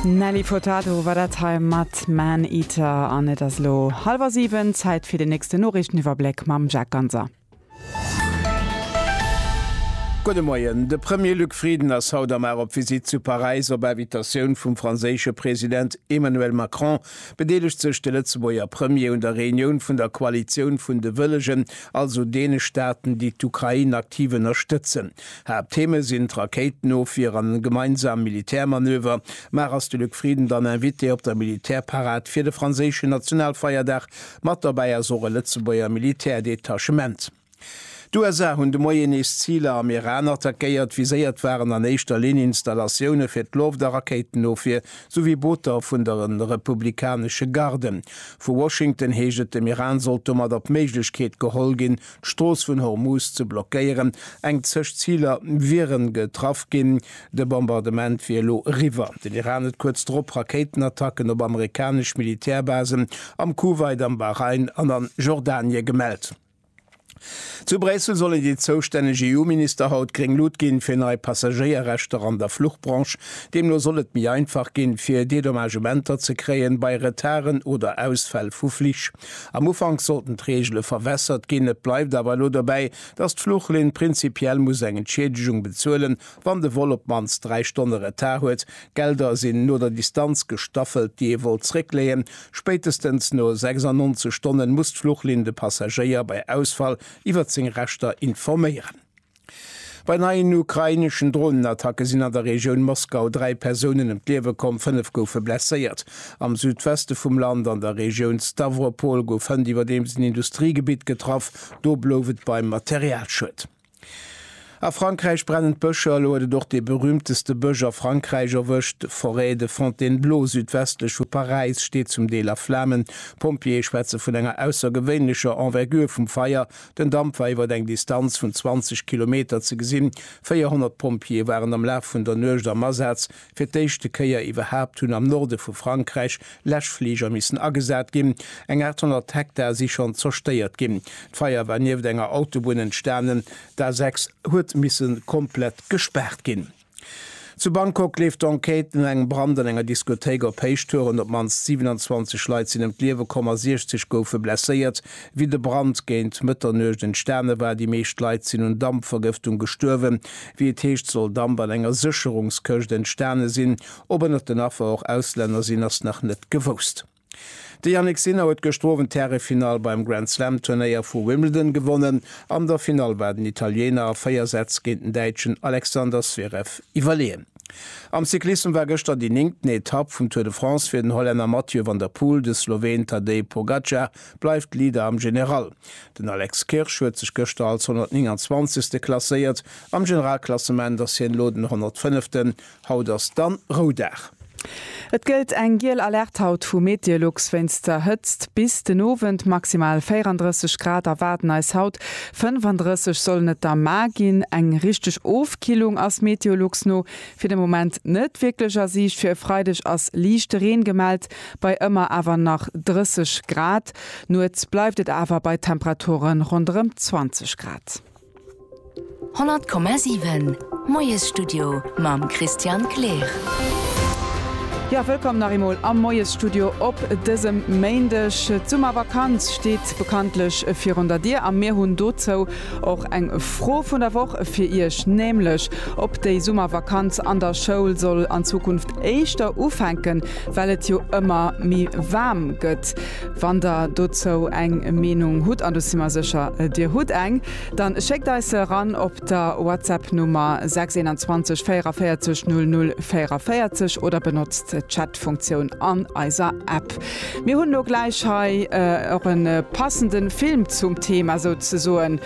Nelly Furtado war dat hei mat Man Eater. An et ass elo hallwer siwen, Zäit fir den nächsten Noriichteniwwerbléck mam Jacques Ganser. Gudde Moien. De Premier Luc Frieden ass haut am Ar op Visitt zu Paräis. Op Invitatioun vum franséische President Emmanuel Macron bedeelegt sech de Lëtzebuerger Premier un der Reunioun vun der Koalitioun vun de Wëllegen, also deene Staaten, déi d'Ukrain aktiv ënnerstëtzen. Haapttheme sinn d'Rakéitenofwier an gemeinsam Militärmanöver. Mar ass de Luc Frieden dann Invité op der Militärparad fir de franséischen Nationalfeierdag? Mat dobäi ass och e Lëtzebuerger Militärdetachement. D'USA hunn de Moien nees Ziler am Iran attackéiert. Viséiert waren an éischter Linn Installatioune fir d'Loft a Rakéitenofwier souwéi Booter vun der republikanesche Garde. Vu Washington heescht et, dem Iran sollt domat op d'Méiglechkeet geholl ginn, d'Strooss vun Hormuz ze blockéieren. Eng zeg Ziler wiere getraff ginn. De Bombardement wier elo eriwwer. Den Iran huet kuerz drop Rakéitenattacken op amerikanesch Militärbasen am Kuwait, am Bahrain an a Jordanie gemellt. Zu Bréissel sollen déi zoustänneg EU-Minister haut gréng Lut ginn, fir nei Passagéierrechter an der Fluchbranche. Deemno soll et méi einfach ginn, fir Dedommagementer ze kréien, bei Retarden oder Ausfäll vu Flich. Am Ufank sollten d'Reegele verwässert ginn, et bleift awer elo dobäi, datt d'Fluchlinn prinzipiell muss eng Entschiedegung bezuelen, wann de Vol op d'mannst dräi Stonne Retard huet. D'Gelder sinn no der Distanz gestaffelt, déi ee wollt zréckleeën. Spéitestens no 96 Stonne muss d'Fluchlinn de Passagéier bei Ausfall iwwer seng Rechter informéieren. Bei neien ukraineschen Dronenattacke sinn an der Regioun Moskau dräi Persounen ëm d'Liewe komm, fënnef goufe blesséiert. Am Südweste vum Land an der Regioun Stawropol gouf hënt iwwerdeems en Industriegebitt getraff, do blouf et beim Materialschued. A Frankräich brennen d'Bëscher, elo huet et och dee berüümteste Bësch a Frankräich erwëscht. D'Forêt de Fontainebleau südwestlech vu Paräis steet zum Deel a Flamen. D'Pompjeeë schwätze vun enger aussergewéinlecher Envergure vum Feier, Den Damp war iwwer eng Distanz vun 20 Kilometer ze gesinn. 400 Pompjeeë waren am Laf vun der Nuecht am Asaz. Fir d'éischte Kéier iwwerhaapt hunn am Norde vu Frankräich Läschfliger missen agesat ginn. Eng 800 Hektar si schonn zerstéiert ginn. D'Feier war nieft enger Autobunn entstanen. D'A6 huet misse komplett gespaart ginn. Zu Bangkok leeft d'Enquête no engem Brand an enger Diskothéik op Héichtouren. Op d'mannst 27 Leit sinn ëm d'Liewe komm a 60 goufe blesséiert, wéi de Brand géint Mëtternuecht entstane war. Déi meescht Leit sinn un Dampvergëftung gestuerwen. Wéi et heescht, soll Damp an enger Sécherungskëscht entstane sinn. Ob ënnert den Affer och Auslänner sinn, ass nach net gewousst. De Jannik Sinner huet gëschter Owend d'Härefinall beim Grand-Slam-Turnéier vu Wimbledon gewonnen. An der Finall war den Italiener a véier Sätz géint den Däitschen Alexander Zverev iwwerleeën. Am Cyclissem war gëschter déi néngten Etapp vum Tour de France fir den Hollänner Mathieu van der Poel. De Sloween Tadej Pogacar bleift Leader am General. Den Alex Kirsch huet sech gëschter als 129. klasséiert. Am Generalklassement ass hien elo den 105. Haut ass dann Roudag. Et gëllt eng giel Alerte haut vu Meteolux wéinst der Hëtzt bis den Owend. Maximal 34 Grad erwaarden eis haut, 35 sollen et da mar ginn. Eng richteg Ofkillung ass Meteolux no fir de Moment net wierklech a Siicht. Fir e Freideg ass liichte Reen gemellt bei ëmmer awer nach 30 Grad. Nuets bleift et awer bei Temperaturen ronderëm 20 Grad. 100,7 Moiesstudio mam Christian Kleer. Jo, wëllkomm nach eemol am Moiesstudio op dësem Méindeg. D'Summervakanz steet bekanntlech virun der Dier a mir hunn dozou och eng Fro vun der Woch fir Iech, nämlech ob déi Summervakanz an der Schoul soll an Zukunft éischter ufänken, well et jo ëmmer méi waarm gëtt. Wann der dozou eng Meenung hutt, an do si mer sécher, Dir hutt eng, dann schéckt eis se eran op der WhatsApp-Nummer 621 44 00 44 oder benotzt d'Chat-Funktioun an eiser App. Mir hunn elo gläich hei och e passende Film zum Thema souzesoen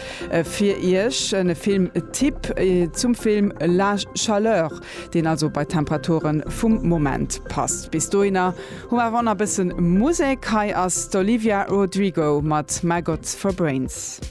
fir Iech, e Film-Tipp zum Film La Chaleur, deen also bei d'Temperature vum Moment passt. Bis dohinner Hu awer och nach bëssen Musek. Hei ass d'Olivia Rodrigo mat My God for Brains.